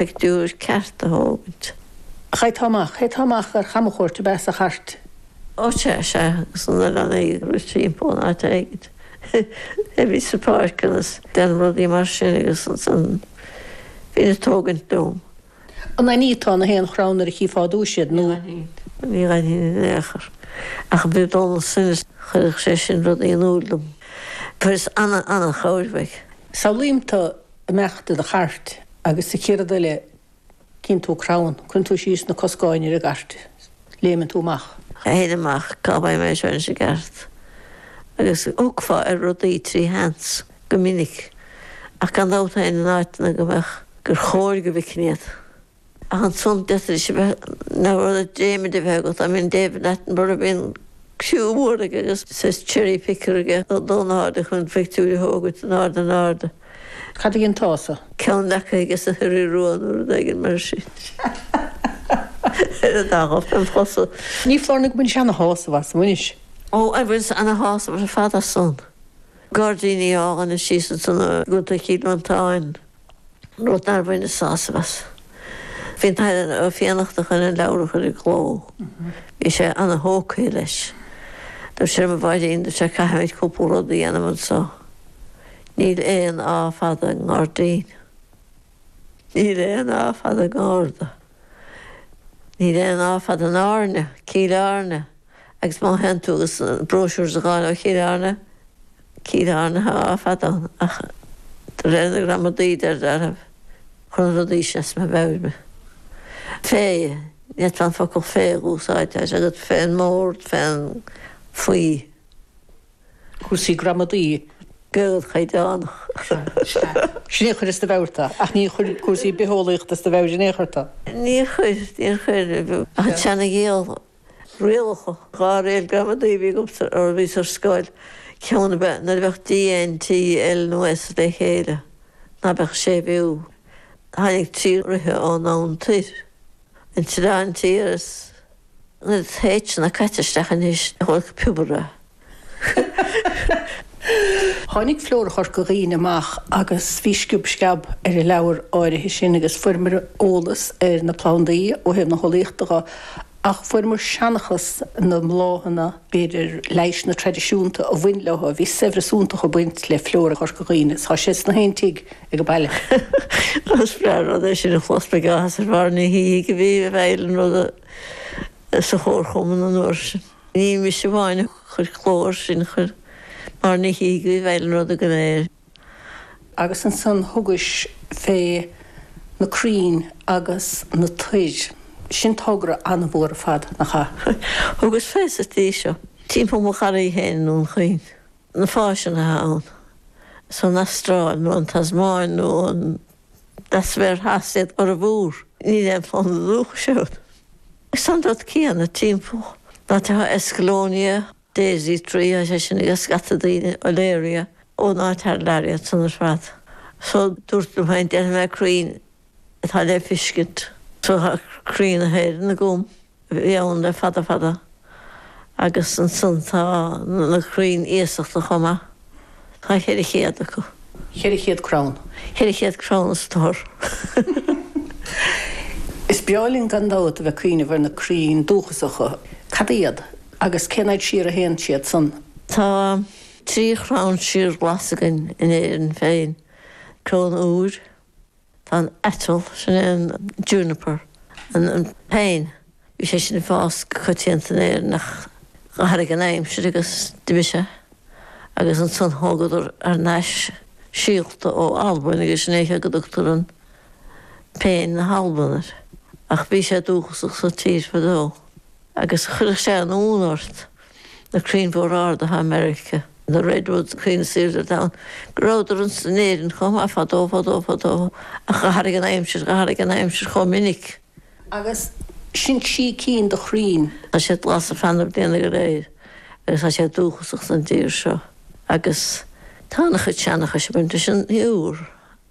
pictiúr ceart a thógaint. Chaitheá dul amach. Chaitheá dul amach ar chamchuairt ab ea sa chairt. Áit ar sea agus an oileán ag rith timpeall in áit éigint. Hé, bhí sa pháirc agus déanamh rudaí mar sin agus ansan bhínn ag tógaint dom. An bhfanfá in aon chrann nuair a chífeá ar dtúis iad nó? Ní fhanfainn. Ní fhanfainn in aon chor. Ach b'fhéidir Donncha chuirfeadh sé sin rudaí in iúil dom. Tá fhios ana-ana-chomhairfeach. Samhlaím tú ag imeacht i do chairt agus sa chéad rud eile cíonn tú crann, cuireann tú síos na coscáin ar an gcairt, léimeann tú amach. Théinn amach cá bhfios an mbeinnse ins an gceart agus thiocfá ar rudaí trí sheans go minic ach gan dabht féin in áiteanna go mbeadh gur chóir go bhficfinn iad. Ach ansan d'fhéadfaidis a bheith, níor mhór dréimire a bheith agat. I mean David Attenborough, a bhí an criú mhór aige agus saghas cherry picker aige ag dul in airde chun an phictiúir a thógaint in ard an airde. Cad í an t-aos a? Ceann acu aige sna hioraí rua nó rud éigin mar sin. Ar a dá ghob fem chosa. Ní foláir nó go bhfuil sé ana shásamh as anois. Ó, bhuel ana shásamh ar fad as san. Gairdíní Átha na Sí san i gContae Chill Mhantáin. rud nár bhaineas sásamh as. Bhí an tAthair Ó Fiannachta chun an leabhar a chur i gcló. Bhí sé ana-thógtha leis. Dúirt sé liom, 'A Mháirín, dúirt sé, 'caithfimid cúpla rud a dhéanamh anseo. Níl aon á fada i ngairdín. Níl aon á fada i ngarda. Níl aon á fada in Airne, Cill Airne, agus má théann tú agus an bróisiúr a fháil ó Chill Airne, Cill Airne tá á fada ann, ach de réir na gramadaí chuireann na rudaí sin as mo mheabhair me. Fé, ní fhéadfá an focal fé a úsáid, tá sé agat fén mbord, fén, faoi. cúrsaí gramadaí, Gaeilge chaighdeánach. Sin é a chuir as do mheabhair tu. Ach níor chuir cúrsaí bitheolaíochta as do mheabhair in aon chor tu. Níor chuir, níor chuir. Ach an tSeana-Ghaeilge, rialacha. Dhá riail gramadaí a bhí agamsa nuair a bhíos ar scoil. Ceann ab ea, nuair a bheadh D, N, T, L nó S le chéile, ná beadh séimhiú. Tháinig trí ríthe ón oirthear. an tslán tí agus na tuiseal caite isteach anois i dtobar. Tháinig Flóra Chorca Dhuibhne amach agus bhí sciob sceab ar an leabhar áirithe sin agus fuaireamar eolas ar na plandaí ó thaobh na heolaíochta de ach fuaireamar seanchas na mbláthanna, b'fhéidir, na leighis traidisiúnta a bhain leo. Bhí saibhreas iontach ag baint le flóra Chorca Dhuibhne. Tá sé ins gach aon tigh ag an baile. Is breá an rud é sin a chlos beidh áthas ar Mháire Ní Shíthigh a bhí i bhfeighil an ruda sa Chomharchumann an uair sin. Ní mise amháin a chuir cló air sin, chuir Máire Ní Shíthigh a bhí i bhfeighil an ruda go léir. Agus ansan thugais fé na craínn agus na toir. Sin togra ana-mhór ar fad, nach ea? Thugas fé sa tslí seo timpeall mo gharraí féin i nDún Chaoin. Na fásanna atá ann, is ón Astráil nó an Tasmáin nó ón leathsféar theas iad a bhformhór. Níl aon phlanda dúchais ann. Is an dá cheann timpeall na háite, Escallonia, Daisy tree is é sin ag scata daoine Olearia ón áit thar lear iad san ar fad. So dúrt liom féin, déanfaidh mé na crainn atá le feiscint. So tá crainn na hÉireann agam, a bhí ann le fada fada. Agus ansan tá na crainn iasachta chomh maith. Tá cheithre chéad acu. Cheithre chéad crann. Cheithre chéad crann is toir. Is breá linn gan dabht a bheith cuimhneamh ar na crainn dúchasacha. Cad iad? Agus cén fhaid siar a théann siad san? Tá trí chrann síorghlas againn in Éirinn féin, crann iúir, Tá an aiteal, sin é an juniper, an péin, bhí sé sin ag fás go coitianta in Éirinn ach dh'athraigh an aimsir agus d'imigh sé agus ansan thógadar thar n-ais síolta ó Albain agus sin é seo go dtugtar an péin na hAlban air. Ach bhí sé dúchasach sa tír fadó agus chuirfeadh sé an-ionadh ort. na crainn mhóra arda atá i Meiriceá, na redwoods crainn is aoirde ar domhan, go rabhadar anso in Éirinn chomh maith fadó fadó fadó ach d'athraigh an aimsir, d'athraigh an aimsir chomh minic. Agus sin trí cinn de chrainn. Tá siad glas ar feadh na bliana go léir agus tá siad dúchasach don tír seo agus tá an-chuid seanchais ag baint leis an iúr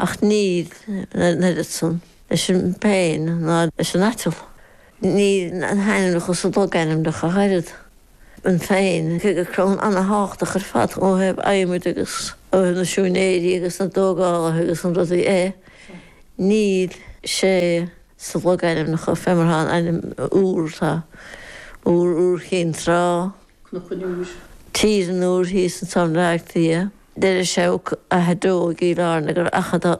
Ach níl an oiread san leis an bpéin ná leis an aiteal. Níl na hainmneacha sa logainmneacha ach oiread. An phéin, cé gur crann ana-thábhachtach ar fad ó thaobh adhmaid agus ó thaobh na siúinéirí agus na dtógálaithe agus na rudaí é, níl sé sa logainmneacha fé mar atá an ainm Iúr, tá Iúr, Iúr Chinn Trá, Cnoc an Iúir, Tír an Iúir thíos anseo i mBleá Cliath. Deireadh sé Achadh Deo i gCill Airne gur Achadh Dá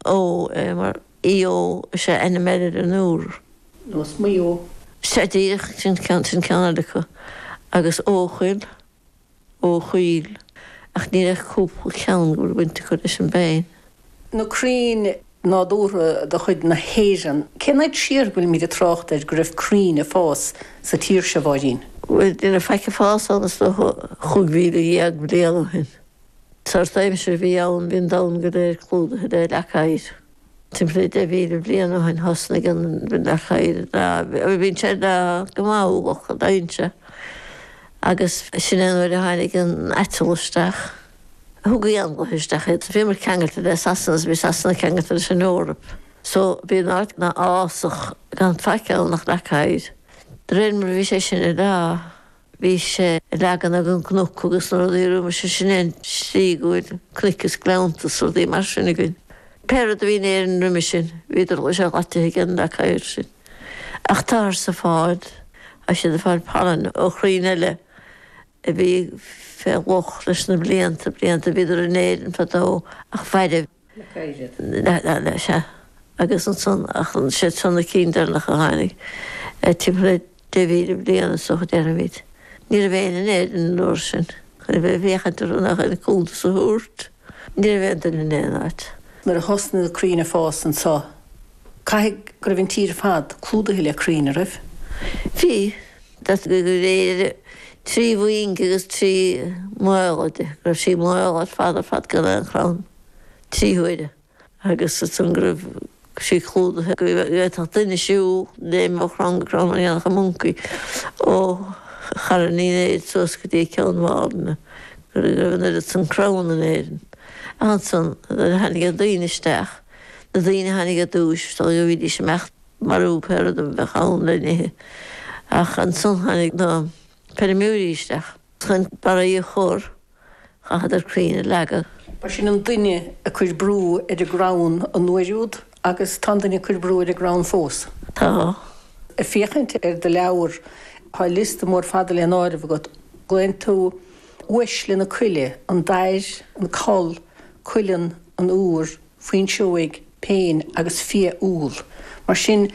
Eo é mar eo is é ainm eile ar an iúr. Nós Maigh Eo. Sea díreach, sin ceann sin ceann eile acu agus Eochaill, Eochoill, ach ní raibh ach cúpla ceann go bhfuil baint acu leis an bpéin. na crainn nádúrtha de chuid na hÉireann. Cén fhad siar a bhfuilimid ag trácht ar go raibh crainn ag fás sa tír seo, a Mháirín? Bhuel, ní raibh faic ag fás ann is dócha, 15,000 bliain ó shin. Sórt aimsir a bhí ann, bhí an domhan go léir clúdaithe le leac oighir. Timpeall is 10,000 bliain ó shin thosnaigh an leac oighir ag leá, bhíonn sé ag leá go maith, uallach, dheineann sé, agus sin é an uair a tháinig an aiteal isteach. Thug éanlaithe isteach iad. So bhíomar ceangailte le Sasana is bhí Sasana ceangailte leis an Eoraip. So bhí an áit ina fhásach gan faic ann ach leac oighir. De réir mar a bhí sé sin ag leá, bhí sé ag leagan ag an gcnoc agus rudaí roimis, sin é an tslí go bhfuil cnoic is gleannta is rudaí mar sin againn. Pé rud a bhí in Éirinn roimhe sin, bhíodar go léir ídithe aige an leac oighir sin. Ach táthar sa fód, tá siad ag fáil pailin ó chrainn eile a bhí fé dhúch leis na blianta, blianta a bhíodar in Éirinn fadó ach fuaireadh le gairid leis, sea, agus ansan, ach siad seo na cinn deireanach a tháinig, timpeall le deich mhíle bliain is dócha, déarfaimid. Ní raibh éinne in Éirinn an uair sin chun a bheith ag féachaint orthu ná chun cuntas a thabhairt. Ní raibh aon duine in aon áit. Nuair a thosnaigh na crainn ag fás anseo, caithfidh go raibh an tír ar fad clúdaithe le crainn, an raibh? Bhí. Deirtí gur chuir Éire trí mhuing agus trí mhaol di, go raibh sí maol ar fad ar fad gan aon chrann, trí huaire. agus ansan go raibh sí clúdaithe go bhféadfadh duine siúl léim ó chrann go crann mar a dhéanfadh an moncaí ó Charn Uí Néid suas go dtí Ceann Mhálanna, go raibh an oiread san crann in Éirinn. Ach ansan, nuair a tháinig na daoine isteach, na daoine a tháinig ar dtúis, dócha go mbídís ag imeacht ag marú pé rud a bheadh ann le n-ithe. Ach ansan tháinig na feirmeoirí isteach. chun barraí a chur, chaitheadar crainn a leagadh. Ba shin an duine ag cur brú ar an gcrann an uair úd agus tá an duine ag cur brú ar an gcrann fós. Tá. Ag féachaint ar do leabhar, tá liosta mór fada le n-áireamh agat. Glaonn tú uaisle na coille, an dair, an coll, cuileann, an iúr, fuinseoig, péin agus fia-úll. Mar sin,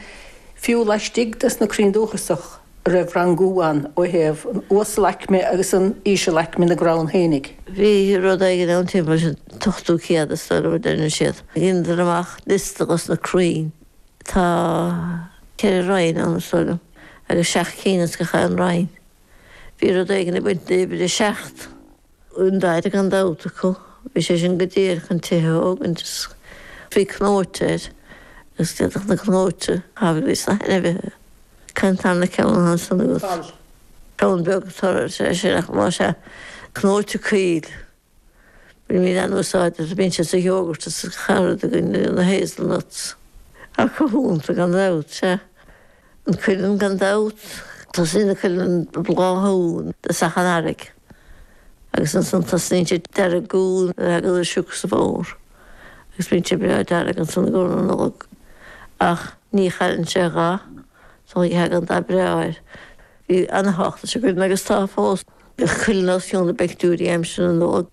fiú laistigh des na crainn dúchasacha, an raibh rangú ann ó thaobh an uasal-aicme agus an íseal-aicme na gcrann fhéinig, Bhí rud éigin ann timpeall an t-ochtú céad, is dóigh liom, a deireann siad. Dhéanadar amach liosta dos na crainn. Tá ceithre roinn ann, is dóigh liom, agus seacht cinn as gach aon roinn. Bhí rud éigin ag baint le uimhir a seacht. An dair gan dabht acu. Bhí sé sin go díreach chun tithe a thógaint is bhí cnóite air agus d'fhéadfadh na cnóite a thabhairt dos na hainmhithe. An tarna ceann ansan agat. Ceann beag a chur air, sé sin, ach más ea, cnóite coill. Bhí míle an-úsáid as, bíonn siad sa yogurt is sa charad againn, na hazelnuts. Ach cruthúnta gan dabht, sea. An cuileann gan dabht, tosaíonn an cuileann ag bláthú i dtosach an earraigh agus ansan tosnaíonn sé ag deargú nuair a thagann an sioc sa bhfómhar agus bíonn sé breá dearg ansan i gcomhair na Nollag ach ní chailleann sé a dhath so tagann an dath breá air. Bhí ana-thábhacht leis an gcuileann agus tá fós. Bhí an cuileann os cionn na bpictiúirí aimsir na Nollag.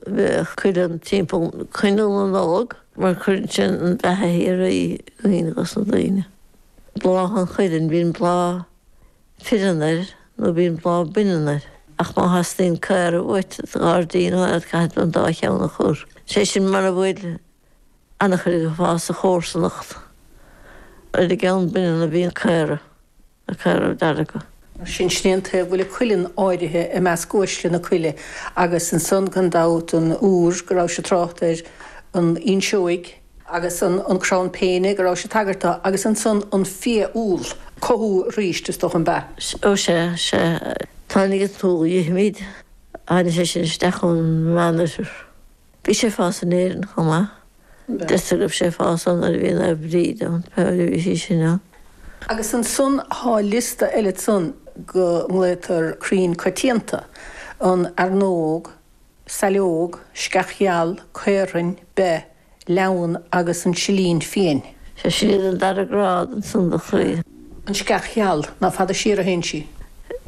bheadh cuileann timpeall coinneal na Nollag mar cuireann sé an bheatha shíoraí i gcuimhne dhos na daoine. Bláth an chuilinn bíonn bláth fireann air nó bíonn bláth baineann air ach má theastaíonn caora uait i do ghairdín áfach caithfidh an dá cheann a chur. Sé sin mara bhfuil an-chuid ag fás sa chomharsanacht. Ar an gceann baineann a bhíonn caora. na caora dearga. Is ní hiontas go bhfuil an cuileann áirithe i measc uaisle na coille, agus ansan, gan dabht, an iúr go rabhais ag trácht air, an fhuinseoig, agus an crann péine go rabhais ag tagairt do, agus ansan an fia-úll, cothú arís, is dócha, an b'ea? Ó sea, sea. Tháinig an t-úll a dh'ithimíd, tháinig sé sin isteach ón Meánoirthear. Bhí sé ag fás in Éirinn chomh maith. Deirtear go raibh sé ag fás ann nuair a bhí Naomh Bríd ann, pé uair a bhí sí sin ann. Agus ansan thá liosta eile ansan go nglaotar crainn coitianta, an fhearnóg, saileóg, sceach gheal, caorthainn, beith, leamhan agus an silín fiain. Sea, sin iad an dara grád ansan do chrainn. an sceach gheal, ná fada siar a théann sí.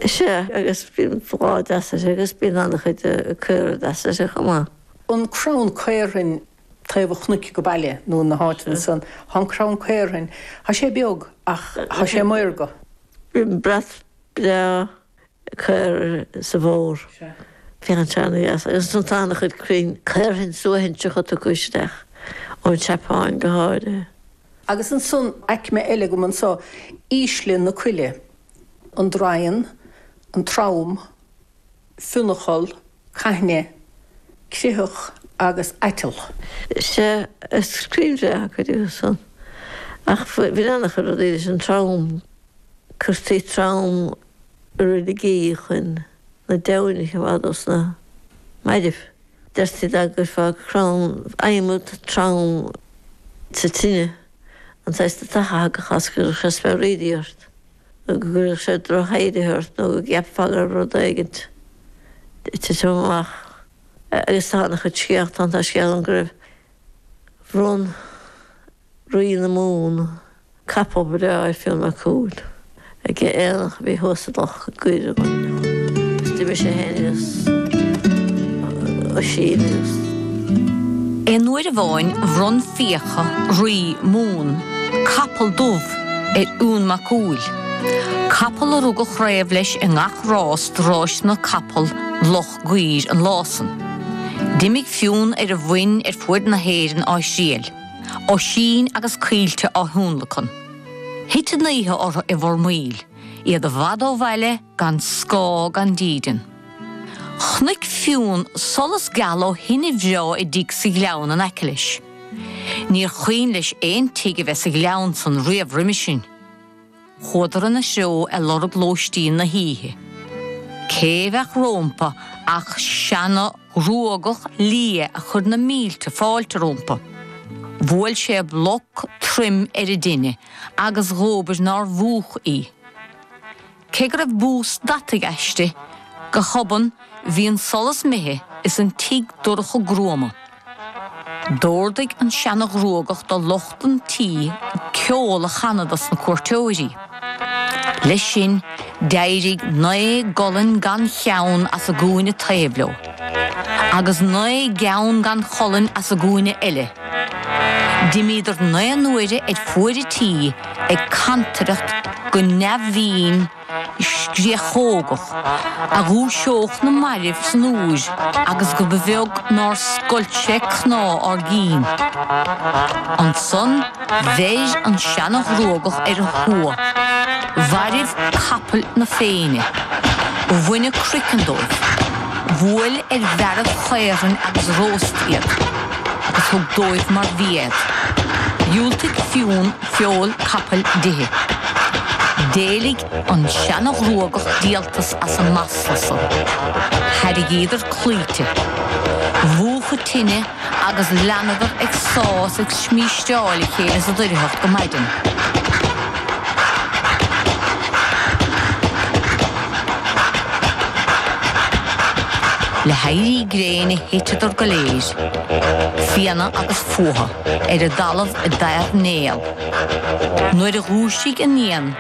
Sea, agus bíonn bláth deas uirthi, agus bíonn an-chuid caora deasa uirthi chomh maith. an crann caorthainn taobh an chnoic go Baile nó in na háiteanna san. Thá an crann caorthainn, thá sé beag ach thá sé maorga. Bíonn brat breá caor sa bhfómhar. Bíonn sé ag féachaint deas agus ansan tá an-chuid crainn caorthainn suaithinseacha tugtha isteach, ón tSeapáin go háirithe. Agus ansan aicme eile agam anso, ísle na coille, an draighean, an trom, fionncholl, caithne, critheach agus aiteal. Sea, is crainn bheaga cuid díobh san, ach bhain an-chuid rudaí leis an trom, cuirtí trom i reiligí chun na deamhain a choimeád ó sna mairbh. Deirtí dá gcuirfeá crann adhmad trom, sa tine, an saghas deatach a thagadh as go gcuirfeadh sé speabhraídí ort. nó go gcuirfeadh sé drochthaibhrithe ort nó go gceapfá go raibh rud éigin ag titim amach. Agus tá an-chuid scéalta ann. Tá scéal ann go raibh bhronn Rí na Mumhan capall breá ar Fionn Mac Cumhaill ag aonach a bhí thuas i Loch Goir an uair úd agus d'imigh sé féin agus Oisín agus. Aon uair amháin bhronn Fiacha, Rí Mumhan, capall dubh. ar Fhionn Mac Cumhaill, capall a rug an chraobh leis i ngach rás de Ráiseanna Capall Loch Goir an lá san. D'imigh Fionn ar a mhuin ar fuaid na hÉireann á thriail, Oisín agus Caoilte á thionlacan. Thit an oíche orthu i bhFormaoil, iad i bhfad ó bhaile gan scáth gan dídean. Chonaic Fionn solas geal ó thine bhreá i dtigh sa ghleann in aice leis. Níor chuimhin leis aon tigh a bheith sa ghleann san riamh roimis sin. Chuadar ina threo ag lorg lóistín na hoíche. Cé bheadh rómpa ach seana-ghruagach liath a chuir na mílte fáilte rómpa. Bhuail sé bloc troim ar an dtine agus dhóbair nár mhúch í. Cé go raibh bús deataigh aisti, go hobann bhí an solas imithe is an tigh dorcha gruama. D'ordaigh an seana-ghruagach do lucht an tí ceol a chanadh dos na cuairteoirí. Leis sin, d'éirigh naoi gcolainn gan cheann as an gcúinne taobh leo. agus naoi gceann gan cholainn as an gcúinne eile. D'imíodar naoi n-uaire ar fuaid an tí, ag cantaireacht go neamhbhinn scréachógach, a dhúiseodh na mairbh san úir agus go ba bheag nár scoilt sé cnámha ár gcinn. Ansan. Bheir an seana-ghruagach ar a thua. Mhairbh capaill na Féinne. Bhain an croiceann dóibh. Bhuail ar bhearaibh chaorthainn agus róst iad. Agus thug dóibh mar bhia iad. Dhiúltaigh Fionn feoil capaill d'ithe. D'éiligh an seana-ghruagach díoltas as an masla san. Thairrigíodar claimhte. Mhúch an tine. agus leanadar ag sá is ag smísteáil a chéile sa doircheacht go maidin. Le héirí gréine thiteadar go léir, fianna agus fuatha, ar an dtalamh i dtámhnéal. Nuair a dhúisigh an Fhiann,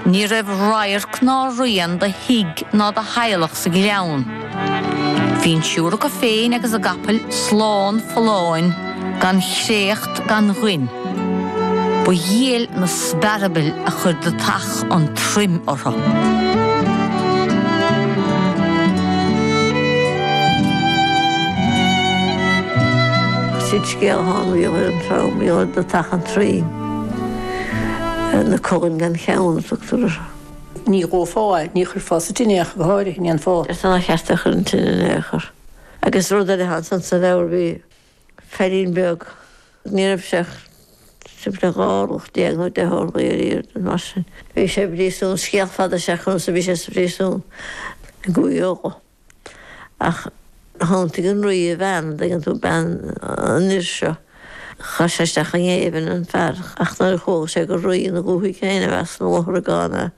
ní raibh radharc ná rian do thigh ná do theaghlach sa ghleann. Bhí an triúr acu féin agus a gcapaill slán folláin gan chréacht gan ghoin. Ba dhiail na spearbaill a chuir deatach an troim orthu. Sin scéal a tháinig ar an trom, bhí orthu deatach an troim. Na colainn gan cheann a tugtar orthu. Ní dhófá, ní chuirfeá sa tine é ach go háirithe, an ndéanfá. Deirtear nár cheart é a chur inti in aon chor. Agus rud eile ansan sa leabhar, bhí feairín beag, ní raibh sé ach timpeall dhá orlach déag nó deich orlaí ar airde nó mar sin. Bhí sé i bpríosún, scéal fada is ea conas a bhí sé sa phríosún i gCúige Uladh. Ach shantaigh an rí a bhean, an dtuigeann tú, bean an fhir seo. Chaith sé isteach i ngéibheann an fear ach nuair a chuala sé gur rí ina dhúthaigh féin i measc na lutharagán é,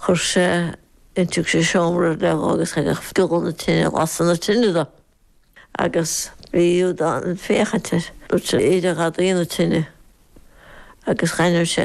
chuir sé in, thug sé seomra ar leith dó agus thagadh giolla na tine ag lasadh na tine dó agus bhí Iubhdán ag féachaint air. Dúirt sé, Éireoidh gadaí na tine agus dhaingneoidh sé